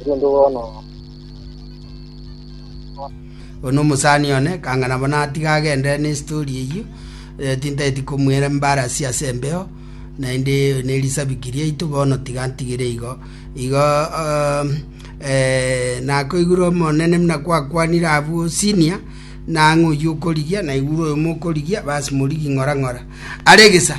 erinde bono Ono omosani one, kang'ana bono atiga agendere ne story eyio, eh, tintaeti komuera embarasi ase embeo, naende eyo ne risabiki riaitu bono tiga ntigire igo. Igo um, eh, nakoigure omonene muna kwakwanire abwo senior, nang'o oyio okorigia, naigure oyo mokorigia, basi morigi ng'ora ng'ora. Aregesa,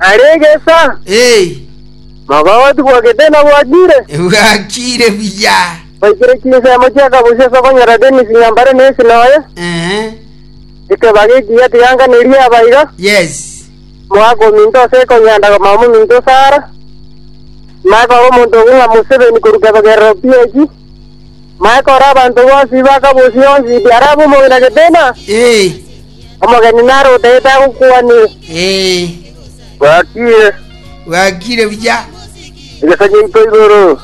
Are egesa, Ee, mogogoti bwa getena bwakire, bwakire buya. baikire chinsemo chia kabusia ase okonyora Dennis Nyambare na esina oye. Ehe, Ekebaga ekiya tiganganerie aba iga, yes. moaka ominto ase ekonyanda komama ominto Sara. Makora omonto ogo ng'a Museveni korwa kebegerero PAG. Makoro abanto bonsi bakabosia onsi arabe omogeni agetena, omogeni nare otagete agokwanire. Bwakire buya egesa giaito igoro,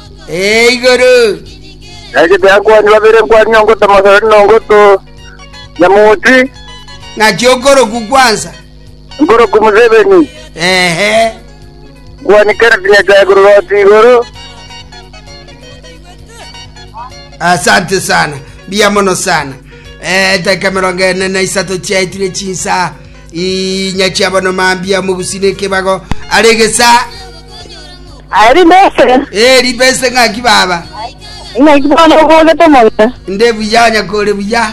na egete akwani babere nkwani nongoto mosori nongoto nyamoti, nkorokwo Museveni. Gwanikera rinyaga igoro roti igoro. Asante sana. Mbuya mono sana. Eh, edaika emerongo ene na isato chiaetire chinsa inya chiabono mambia omogusina ekebago are gesa Ari mbese. eri bese ng'aki baba Ina ikibana obogete mono. nde buya nyakore buya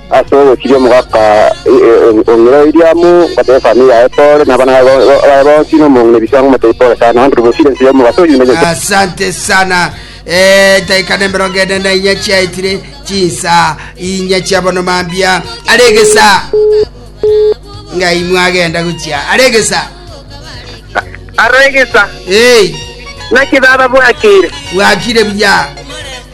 Ase ogochiria omogaka o ng'iroo eria amo, ngoteebia efamiri yaye pore, na abana baye bonsi, na omong'ina ebisango moteebie pore sana, na abanto bosio ense ya omogaso oyio nimenyorete. Asante sana. Eh, daika ne emerongo ene na inya chiaetire, chinsa inya chia bono mambia. Are egesa. Ngai mwagenda gochia. Are egesa. Aregesa, Hey, naki baba bwakire? bwakire buya.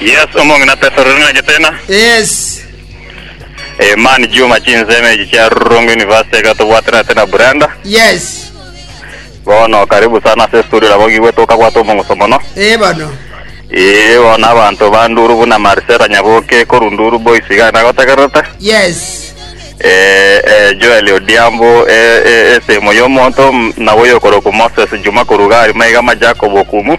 Yes, omong'ina Petero rero nache tena. Yes. Eh, man Juma chinseme echi chia Rongo University gatobwatera tena Brenda. Yes. Bono karibu sana ase studio nabo gigwete okabwata omong'uso mono. Eh bono. Eh, bono abanto banduru buna Marcela Nyaboke koru nduru boys iga nagotegerete. Yes. Eh, eh, Joel Odiambo eh, eh, esemo yomonto nabo yokoroku Moses Juma koru gari maiga ma Jacob Okumu.